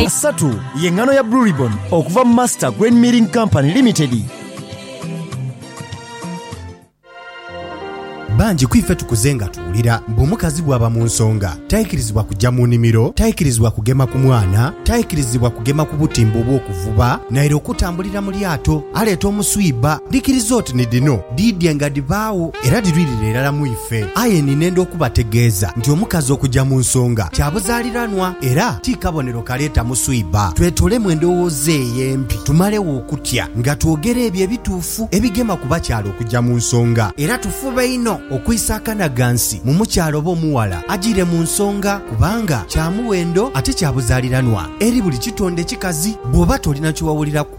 Asatu ye ngano ya Blue Ribbon okuva mu Master Grain Milling Company Limited. Bangi ku ife tukuze nga tuwulira mbu omukazi bw'aba mu nsonga taikirizibwa kujja mu nimiro, taikirizibwa kugema ku mwana, taikirizibwa kugema ku butimba obw'okuvuba naire okutambulira mu lyato. Aleeta omuswiba. Dhikiriza oti ni dhino dhiidhie nga dhibaagho. Era dhirwirira irala mu ife. Aye ninenda okubategeeza nti omukazi okuja mu nsonga kya buzaaliranwa, era ti kabonero kaleeta muswiba. Twetolemu endowooza eyo embi, tumalegho okutya, nga twogera ebyo ebituufu ebigema ku bakyala okuja mu nsonga. Era tufube inho okwisa akanaghansi mu mukyala oba omughala ajiire mu nsonga, kubanga kya muwendo ate kya buzaaliranwa eri buli kitonde kikazi. Bw'oba tolina kye wawuliraku,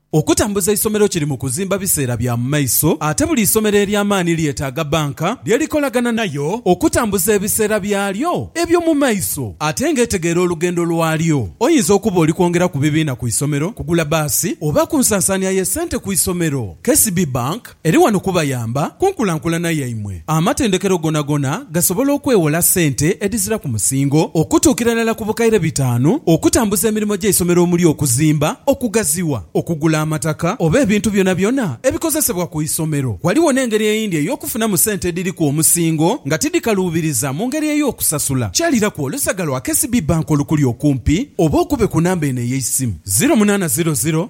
Okutambuza eisomero kiri mu kuzimba biseera bya mu maiso ate buli isomero ery'amaani lyetaaga bbanka lye likolagana nayo okutambuza ebiseera byalyo eby'omu maiso ate ng'etegeera olugendo lwalyo. Oyinza okuba oli kwongera ku bibiina ku isomero, kugula bbaasi oba ku nsansaania y'essente ku isomero. KCB Bank. Eri wano kubayamba ku nkulankulana yaimwe. Amatendekero gonagona gasobola okwewola sente edhizira ku musingo okutuukira irala ku bukaire bitaanu okutambuza emirimo gy'eisomero omuli okuzimba, okugaziwa, okugula amataka oba ebintu byonabyona ebikozesebwa ku isomero. Ghaligho n'engeri eyindi ey'okufunamu sente edhiriku omusingo nga tidhikaluubiriza mu ngeri ey'okusasula. Kyaliraku olusaga lwa KCB Bank olukuli okumpi oba okube ku namba eno ey'eisimu, ziro munaana ziro ziro,